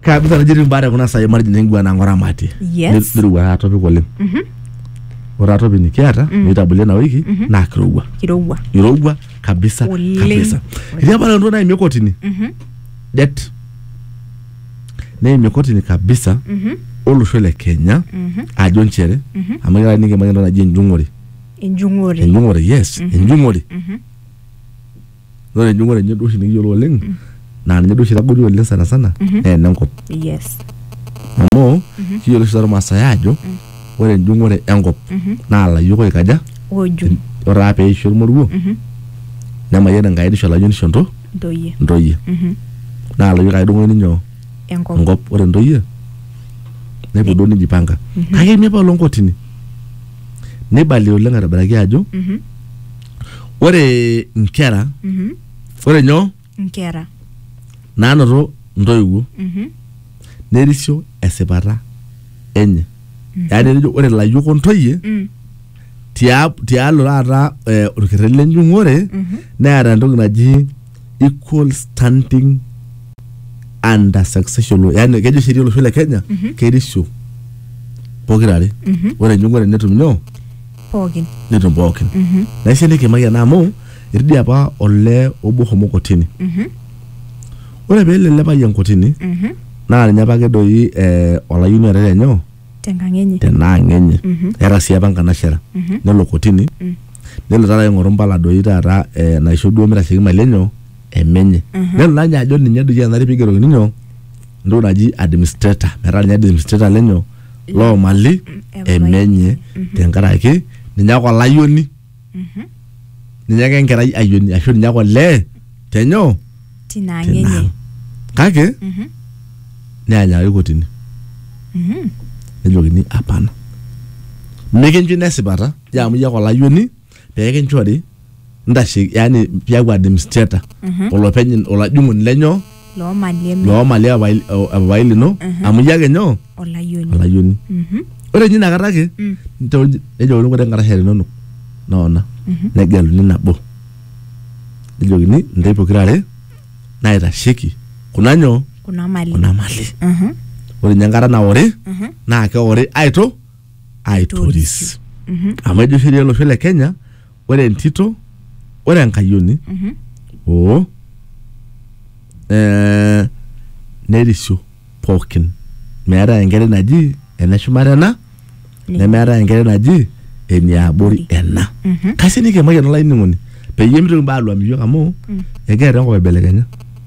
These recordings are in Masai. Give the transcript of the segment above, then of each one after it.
kabisa naji etii mbaare kuna sai margin engua na ngora mati Yes. nirua taa topic oleng ore taa topic nikiata nitabole na wiki na kirowua kirowua irowua kabisa Oleng. kabisa etii apa ntoki naimie kotini det neimie kotini kabisa olosho le kenya ajo nchere amu kira nikimanya entoki naji enjung'ore enjung'ore enjung'ore yes enjung'ore Ore enjung'ore enye duo oshi nikiyiolo oleng naa ninye duo oshi itagoli oleng sana sana naa enenkop. yes Amu kiyiolo oshi Irmaasai aajo ore enjung'ore enkop naa ilayiok oikaja oju ore taa peisho olmoruo nemayian Enkai nisho ilayiok nisho into- ntoyie intoyie. Naa ilayiok ake edung'okini nyoo? enkop enkop ore intoyie nepuo duo nijipanga kake eme apa oloonkotini neibali oleng aitobiraki ajo ore nkera Mhm. ore nyoo Nkera. naanoto ntoiwuo Mhm. nerisio esipata enye yaani tenejo ore layiok ontoyie Mm. tia- tialo taata eh, orkerreti lenjung'ore Mhm. neeta entoki naji equal standing under succession law yani kejo sheria olosho le kenya Mhm. kerisio pokirare Mhm. ore enjung'ore netum nyoo pookin netum pookin naisho nikimaki ena amu etii dii apa olee obo homo kotini ore peelo ele payian kotini naa ninye apake doi eh, olayioni oota lenyo tenkang enye tenaang enye eeta sii apa nkanashera nelo kotini nelo taata aing'oru mpala doi taata eh, naisho duo mitasheki mali enyo emenye nelo naa ninye ajo ninye doi enare pigerokini nyoo entoki naji administrator metaa ninye administrator lenyo loo mali emenye tenkaraki ninye ake olayioni ninye ake enkerai ayioni ashu ninye ake olee tenyoo tina ang' tina enye ang. kake Mhm. neanyakaki kotini Mhm. nejokini apana mikincho ina esipata je amu iyie ake olayioni pee kinchori ntashe yani piaku administrator olopeny olajung'oni lenyoo loo mali eme loo mali epapai epapai lino amu iyie ake nyoo olayioni olayioni Mhm. ore ninye inakata ake Mm. nitooji- nejokini ore nkarasha linonok noona negeluni nabo nejokini ntae pokirare naitasheki kuna nyoo kuna mali kuna mali Mhm. ore ninye enkata naori Mhm. naa keori aito aitoris amu ejo sheria olosho le kenya ore entito ore enkayioni oo eh, nerisio pookin meetae enkerai naji ene shumata ena nemeetae enkerai naji eniabori ena kasi nikimayian olainining'oni peyie mitoki mbaa aluam iyiok amu egira enkop aibelekenya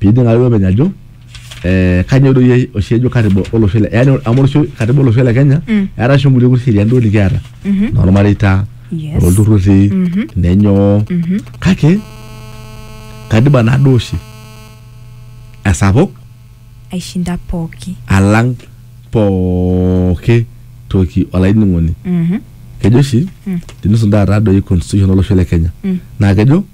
Pining ake openy ajo eh, kanyoo doi oshi ejo katiba olosho le yani amu olosho katiba olosho le Kenya Mm. eeta oshi nkulie kuti sheriani duo nikiata Mhm. normareita Yes. olturrurri Mhm. nenyoo Mhm. kake katiba nado oshi esapuk Aishinda pooki. alang pooki toki olainining'oni Mhm. kejo oshi Mm. tenisun taata doi constitution olosho le Kenya Mm. naa kejo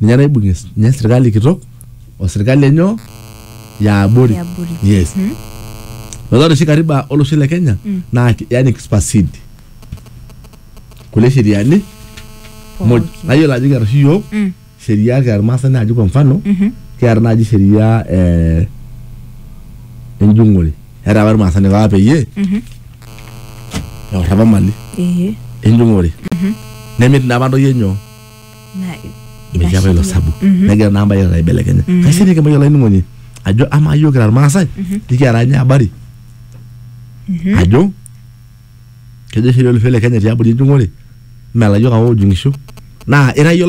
ninye naibung'ie ninye sirkali kitok o sirkali enyoo yaabori Yaabori. yes metaa ore oshi katiba olosho le kenya naa ki- yani kispasid kulie sheriani muj Pooki. nayiolo ajo kiata oshi yiok Mm. sheria kiata irmaasai naaji kwa mfano Mhm. kiata naaji sheria eh, enjung'ore eeta apa irmaasai nipapa peyie Mhm. eor apa mali Ee. enjung'ore nemit naa apa ntoyie nyoo Na- metii apa ilo inashiria. sabu Mhm. negira naa mbae aibelekenya kaisho nikimayiolo olainining'oni ajo amaa yiok kira irmaasai nikiara ninye abari Mhm. ajo kejo oshi olosho le kenya tiabori enjung'ore melayiok apa oojung'isho naa ira iyie olainining'oni